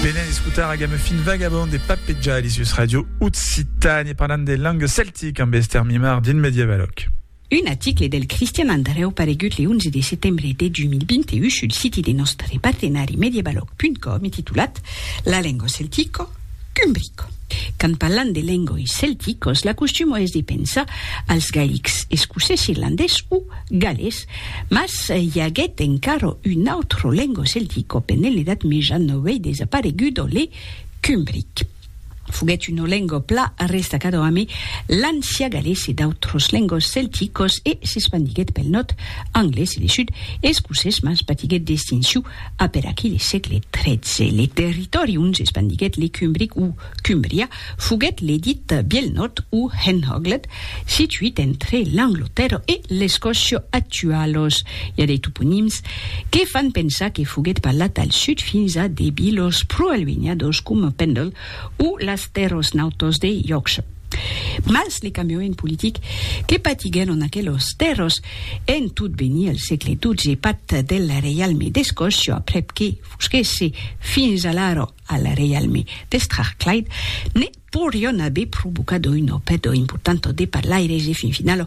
Venen d'escutar a game fin vagabond de Papeja Alisius Radio Occitane parlant de langue celtic amb Esther Mimar din Medievaloc. Un aticle del Cristian Andreu paregut le 11 de setembre de 2021 sul siti de nòstre partenari medievaloc.com e titulat La lengo celtico, Cumbrico. Quand parlam de lengoi celticos, l'acostumo es de pensar als gailics, escocés, irlandés o gallés, mas i aguèt encara un autre lengo celtico pendent l'Edat Meja novei desaparegudo, le cumbric. Foguèt una lengo pla restacado ame l'ancià gallés e d'autres lengos celticos e s'espandiguèt pel nòrd anglés e le sud escocés, mas patiguèt d'extinciu A per aquí le sègle XIII, le territòri ont s'espandiguèt le Cumbric o Cumbria foguèt le dit Biel Nòrd o Henhoglet, situit entre l'Anglotèrra e l'Escòcia actualos. I a de toponims que fan pensar que foguèt parlat al sud fins a de vilos pro-alunhados coma Pendle o las Terros Nautos de Yorkshire. Mas le cambiament politic que patiguèron en aquelos tèrres en tot venir al sègle xii pat del reialme d'Escòcia, aprèp que fusquèsse fins alara al reialme de Strathclyde, ne podrián aver provocat una pèrda importanta de parlaires e fin finala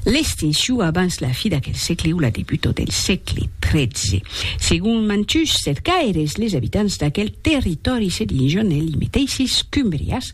l'extincion abans la fi d'aquel sègle o la debuta del sègle xiii. Segon mantuns cercaires, les abitants d'aquel territòri se disián elli meteisses Cumbrias,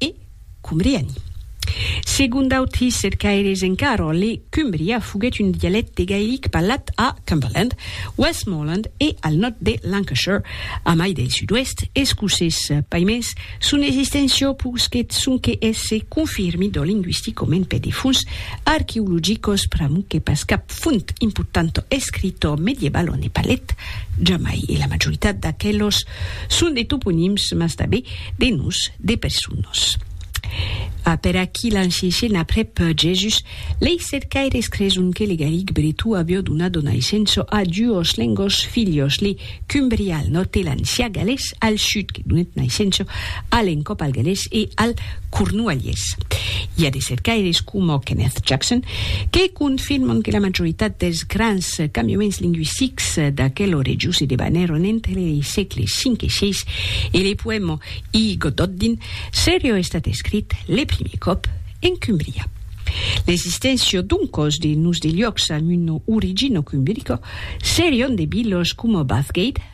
E cumbriani. Segon d'autri cercaires en Carroll, le Cumbria foguèt un dialècte gaelic parlat a Cumberland, Westmorland e al nòrd de Lancashire, a mai del sud-oèst escocés. Paimens, son existéncia posquèt sonque èsser confirmida lingüisticament per de fonts arqueologicas, pr'amor que pas cap font importanta escrita medievala ne parlèt jamai, e la majoritat d'aquelas Son de toponims, mas tanben de noms de personas. A per aquí l'an Xixen aprèp Jèsus, lei cercaires creson que le gallic bretó avió donat o naissença a duos lengos filhos, le cumbrià al nòrd e l'ancià galés al sud, que donèt naissença a l'encòp al galés e al Cornualhés. I a de cercaires coma Kenneth Jackson que confirman que la majoritat dels grans cambiaments lingüistics d'aquel orejós se debanèron entre lei sègles V e VI e le poèma I Gododdin serió estat escrit le primier còp en Cumbria. L'existéncia doncòs de nos de liòcs amb una origina cumbirica serion de vilas coma Bathgate,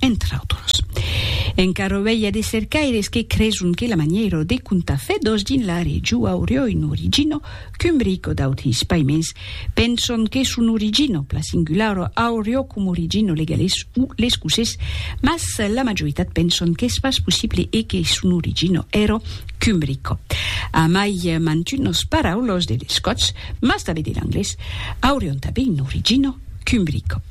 entre autres. Encara auei a de cercaires que creson que la manièra de contar fedòs dins la region aurió un origino cumbrico d'autis paiments penson que son origino pla singulara aurió com origino legalés o l'escocés mas la majoritat penson qu'es pas possible e que son origino èra cumbrico. Amai mantunas paraulas de l'escotz mas tanben de l'anglés aurion tanben un origino cumbrico.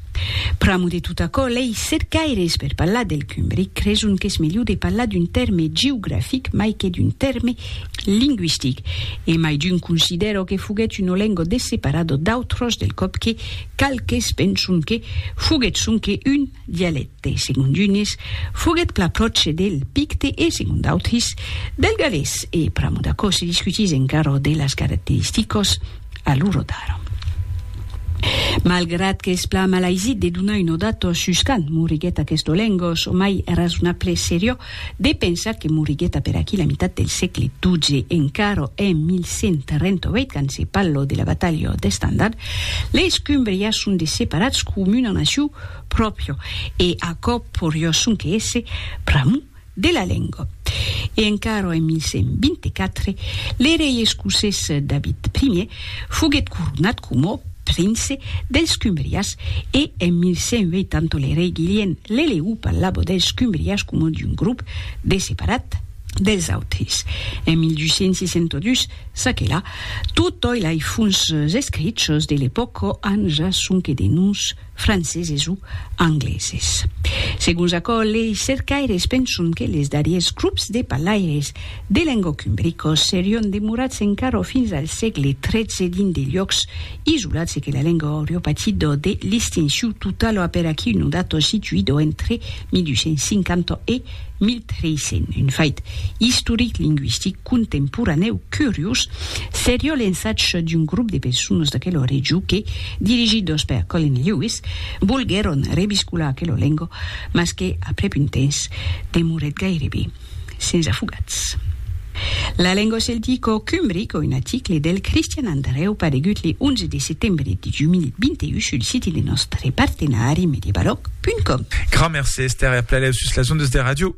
Pr'amo de tot aquò, lei cercaires per parlar del cumbric creson qu'es melhor de parlar d'un tèrme geografic mai que d'un tèrme lingüistic. E mai d'un considèro que foguèt un olengo de separado d'autros del còp que qualques penson que foguèt sonque un dialècte. Segon d'unes, foguèt plan pròche del picte e, segon d'autres, del galés. E pr'amo d'aquò se discutís encara de las caracteristicas. A lo rotard. Malgrat qu'es plan malaisit de donar un odat sus quand moriguèt aquest Olengos, o mai èra zona ples seriò de pensar que moriguèt a per aquí la mitat del sègle xii, encara en 1138 quand se pallo de la batalha d'Estandard, les Cumbrias son de separats com una naciu pròpio e aquò porió sonque èsser pr'amor de la lenga. E encara en 1124, le rei escocés David Ier foguèt coronat coma prince dels Cumbrias e en 1180 le rei Guilhem l'Eleu parlava dels Cumbrias coma d'un grop de separat dels autres. En 1262, ça que la, totòi lai fons escrichos de l'epòca an ja sonque de noms franceses o angleses. Segons aquò, lei cercaires penson que les darriers grops de parlaires de lengòc umbricos serion demorats encara fins al sègle XIII dins de luòcs isolats e que la lenga aurio patido de listinciu total a per aquí unu dato situido entre 1250 e 1300, un fait istoric linguistic. contemporanèu curiós seriá l'ensatge d'un grop de personas d'aquela region que, dirigidos per Colin Lewis, volguèron reviscolar aquela lenga, mas que, aprèp un temps, demorèt gairebe sens afogats. La lenga celtica cumbrica, un article del Cristian Andrèu paregut le 11 de setembre de 2021 sul siti de nòstre partenari Mediebaloc.com. Grand merci Esther e a plaelèu sus las ondas de ràdio.